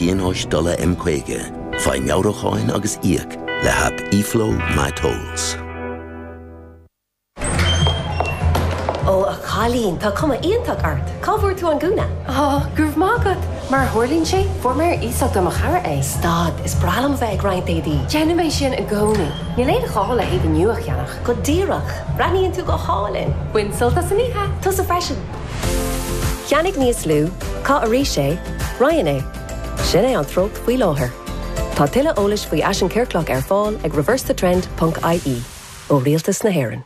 Pionóis Dola M50. Faigh Meabhrúcháin agus Íoc le hAip eFlow MyTolls. Ó, a chailín, tá cuma iontach ort! Cá bhfuair tú an gúna? Ó, go raibh maith agat! Mar a tharlaíonn sé, fuair mé ar iasacht ó mo chara é. Stad, is breá liom a bheith ag roinnt éadaí! Déanaim é sin i gcónaí. Níl aon ghá le héadaí nua a cheannach. Go díreach! Breathnaíonn tú go hálainn! Bain sult as an oíche! Tusa freisin! Ceannaigh níos lú, caith arís é, roinn é. Sin é an treocht faoi láthair. Tá tuilleadh eolais faoi fhaisean ciorclach ar fáil ag ReverseTheTrend.ie ó Rialtas na hÉireann.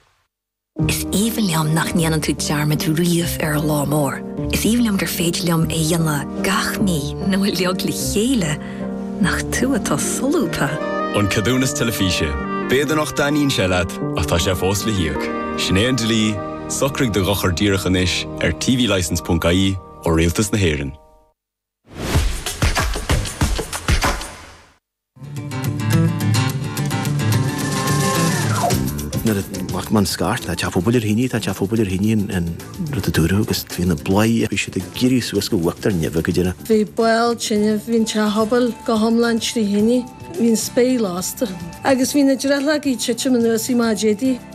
Is aoibhinn liom nach ndéanann tú dearmad riamh ar an lá mór. Is aoibhinn liom gur féidir liom é a dhéanamh gach mí nó uiliog le chéile, nach tú atá solúbtha? An Ceadúnas Teilifíse. B'fhéidir nach dtaitníonn sé leat, ach tá sé fós le híoc. Sin é an dlí. Socraigh do dhochar díreach anois ar tvlicense.ie ó Rialtas na hÉireann. Nuair a tháinig an scairt tá teach pobail ar thine, tá teach pobail ar thine an rud a dúradh agus bhí na bladhairí ag éirí suas go bhfagtar nimh ag go déanach. Bhí baill tine, bhí an teach pobail go hiomlán trí thine, bhí an spéir lasta agus bhí na drithleogaí titim anuas i maidéidí.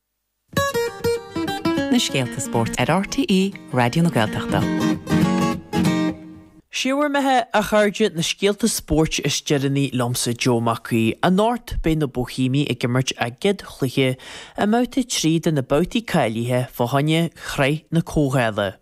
na scéalta spóirt ar RTÉ Raidió na Gaeltachta. Sé bhur mbeatha, a chairde, na scéalta spóirt is deireanaí liomsa Joe Mac Aoidh. Anocht beidh na Boihéimigh ag imirt a gcéad chluiche i mbabhta 3 de na babhtaí cáilithe fá choinne Shraith na Comhdhála.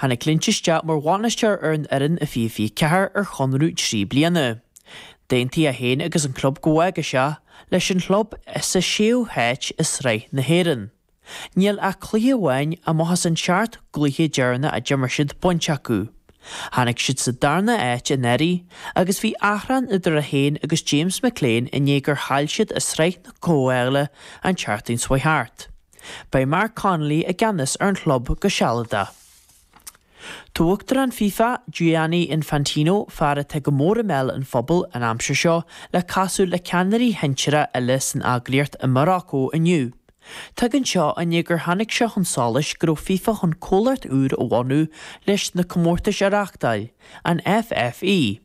Tháinig Lynch isteach mar bhainisteoir ar an fhoireann i 2024 ar chonradh trí bliana. D'aontaigh é féin agus an club go bhfágfadh sé, leis an chlub sa séú háit i Sraith na hÉireann. Níl ach cluiche amháin, amach as an seacht gcluiche deireanach a d'imir siad, bainte acu. Tháinig siad sa darna háit anuraidh agus bhí achrann idir é féin agus James McClean i ndiaidh gur chaill siad i Sraith na Comhdhála an tseachtain seo thart. Beidh Mark Connolly i gceannas ar an chlub go sealadach. Tá Uachtarán FIFA, Gianni Infantino, fear atá go mór i mbéal an phobail an aimsir seo, le castáil le ceannairí shinsearacha eile san eagraíocht i Maracó inniu. Tagann seo i ndiaidh gur tháinig sé chun solais go raibh FIFA chun comhlacht úr a bhunú leis na comórtais a reáchtáil. An FFE.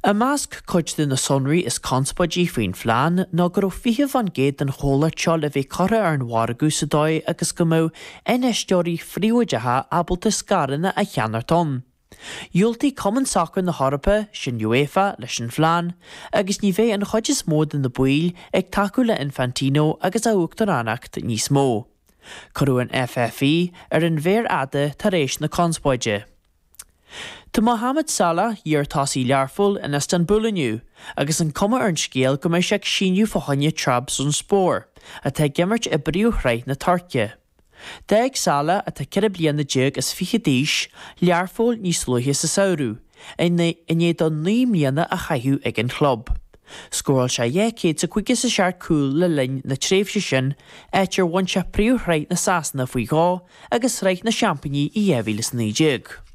I measc cuid de na sonraí is conspóidí faoin phlean ná go raibh 20 fán gcéad den chomhlacht seo le bheith curtha ar an mhargadh sa dóigh agus go mbeadh infheisteoirí phríobháideacha ábalta scaireanna a cheannacht ann. Dhiúltaigh Cumann Sacair na hEorpa, sin UEFA, leis an phlean agus ní bheidh an chuid is mó de na baill ag tacú le Infantino agus a uachtaránacht níos mó. Cuireadh an FFE ar an mhéar fhada tar éis na conspóide. Tá Mohamed Salah, iar-tosaí Learphoill, in Istanbul inniu agus an cuma ar an scéal go mbeidh sé ag síniú fá choinne Trabzonspor, atá ag imirt i bpríomhshraith na Tuirce. D'fhág Salah, atá ceithre bliana déag is fiche d'aois, Learpholl níos luaithe sa samhradh, i ndiaidh dó naoi mbliana a chaitheamh ag an chlub. Scóráil sé dhá chéad is caoga is a seacht cúl le linn na tréimhse sin, áit ar bhain sé príomhshraith Shasana faoi dhó, agus Sraith na Seampainí i 2019.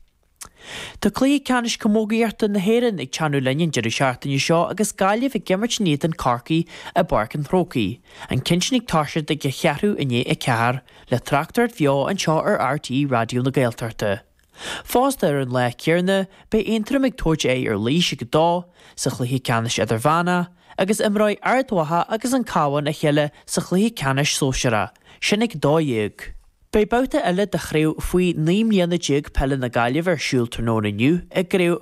Tá Cluiche Ceannais Camógaíochta na hÉireann ag teannadh linn an deireadh seachtaine seo agus Gaillimh ag imirt in éadan Corcaí i bPáirc an Chrócaigh, an ceann sin ag toiseacht ag a cheathrú i ndiaidh a ceathair, le tráchtaireacht bheo anseo ar RTÉ Raidió na Gaeltachta. Fosta ar an lá céanna beidh Aontroim ag tabhairt aghaidh ar Laois ag a dó sa chluiche ceannais idirmheánach, agus imreoidh Ard Mhacha agus An Cabhán a chéile sa chluiche ceannais sóisearach sin ag 12:00. Beidh babhta eile de Chraobh faoi 19 Peile na Gaillimhe ar siúl tráthnóna inniu i gCraobh